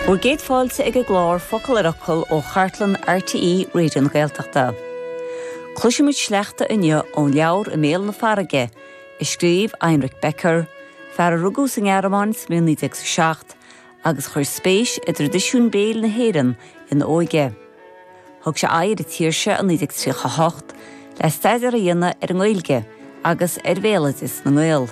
Bhur gcéad fáilte ag an gclár Focal ar Fhocal ó chartlann RTÉ Raidió na Gaeltachta. Cloisfimid sleachta inniu ón leabhar I mBéal na Farraige, a scríobh Heinrich Becker, fear a rugadh sa nGearmáin sa bhliain 1907 agus a chuir spéis i dtraidisiún béil na hÉireann ina óige. Thug sé aghaidh ar an tír seo i 1938 le staidéar a dhéanamh ar an nGaeilge agus ar bhéaloideas na nGael,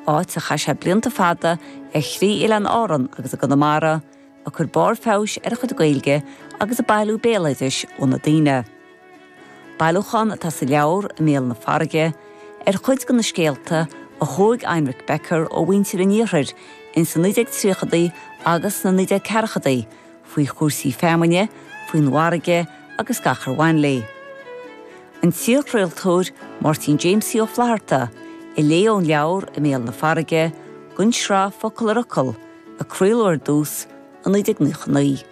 áit ar chaith sé blianta fada ar thrí Oileán Árann agus i gConamara, ag cur barr feabhais ar a chuid Gaeilge agus ag bailiú béaloidis ó na daoine. Bailiúchán atá sa leabhar, I mBéal na Farraige, ar chuid de na scéalta a thóg Heinrich Becker ó mhuintir an Iarthair ins na 1930idí agus sna 1940idí, faoi chúrsaí feamainne, faoin bhfarraige agus gach ar bhain léi. An t-iarchraoltóir Máirtín Jamesie Ó Flatharta a léigh ón leabhar I mBéal na Farraige, don tsraith Focal ar Fhocal, a craoladh ar dtús i 1999.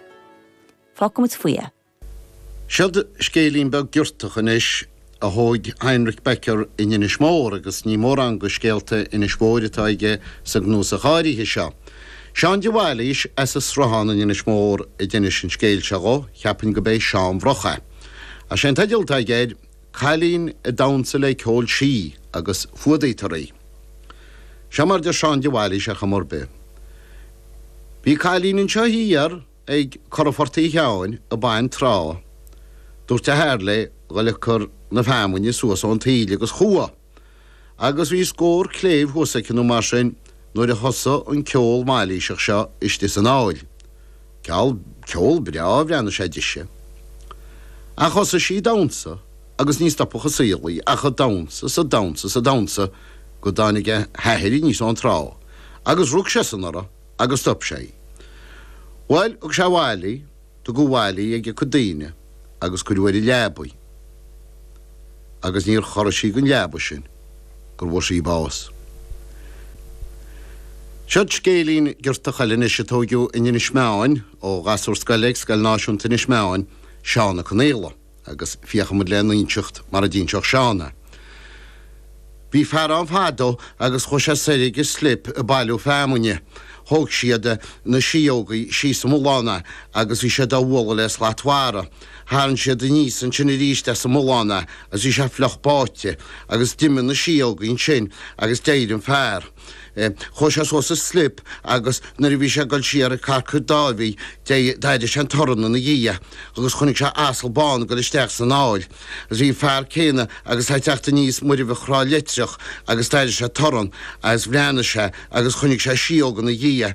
Fágfaimid faoi é. Seod scéilín beag giortach anois a thóg Heinrich Becker in Inis Mór, agus ní mórán de scéalta Inis Mhóir atá aige sa gcnuasach áirithe seo. Seán de Bhailís, as an Sruthán in Inis Mór, a d'inis an scéal seo dhó, cheapfainn go b'é Seán Bhroch é. Sé an teideal atá aige air, 'Cailín ag damhnsa le ceol sí agus fuadaíotar í'. Seo mar deir Seán de Bhailís ar chuma ar bith. Bhí cailín annseo thiar. Ag Cora Phort Uí Cheabhain ag baint trá. Dúirt a hathair léi a dhul ag cur na feamuinne suas ón taoille agus chuaigh, agus bhí scór cléibh thuas aici nó mar sin nuair a thosaigh an ceol mailíseach seo istigh san aill. Ceal ceol breá a bhreathnaigh sé dise. Ach thosaigh sí damhnsa agus ní stopfadh an saol í ach a damhnsa 's a damhnsa 's a damhnsa go dtáinig a h-athair aníos ón trá agus rug seisean uirthi. Agus stop sé. Bhuel thug sé abhaile í, tugadh abhaile í ag a cuid daoine agus cuireadh ar an leaba í. Agus níor chorraigh sí den leaba sin go bhfuair sí bás. Seod scéilín giortach eile anois a tóigeadh in Inis Meáin ó ghasúr scoile ag Scoil Náisiúnta Inis Meáin, Seán Ó Conghaile. Agus féachfaimid lena inseacht mar a d'inseadh Seán é. Bhí fear ann fadó agus chuaidh sé soir ag an slip ag bailiú feamuinne. Thóg siad, na síóga, síos an mullán é agus bhí siad á bhualadh le slat mhara. Tharrain siad aníos annsin aríst as an mullán é agus bhí sé fliuch báidhte agus d'imigh na síóga annsin agus d'éirigh an fear. Chuaidh sé suas an slip agus nuair a bhí sé ag dul siar ag Carcair Dáibhidh d'airigh sé an torann ina dhiaidh agus chonaic sé asal bán ag dul isteach san aill. Agus bhí an fear céadhna agus é a' teacht aníos Muirbheach Thrá Leitreach agus d'airigh sé torann agus bhreathnaigh sé agus chonaic sé síóg ina dhiaidh.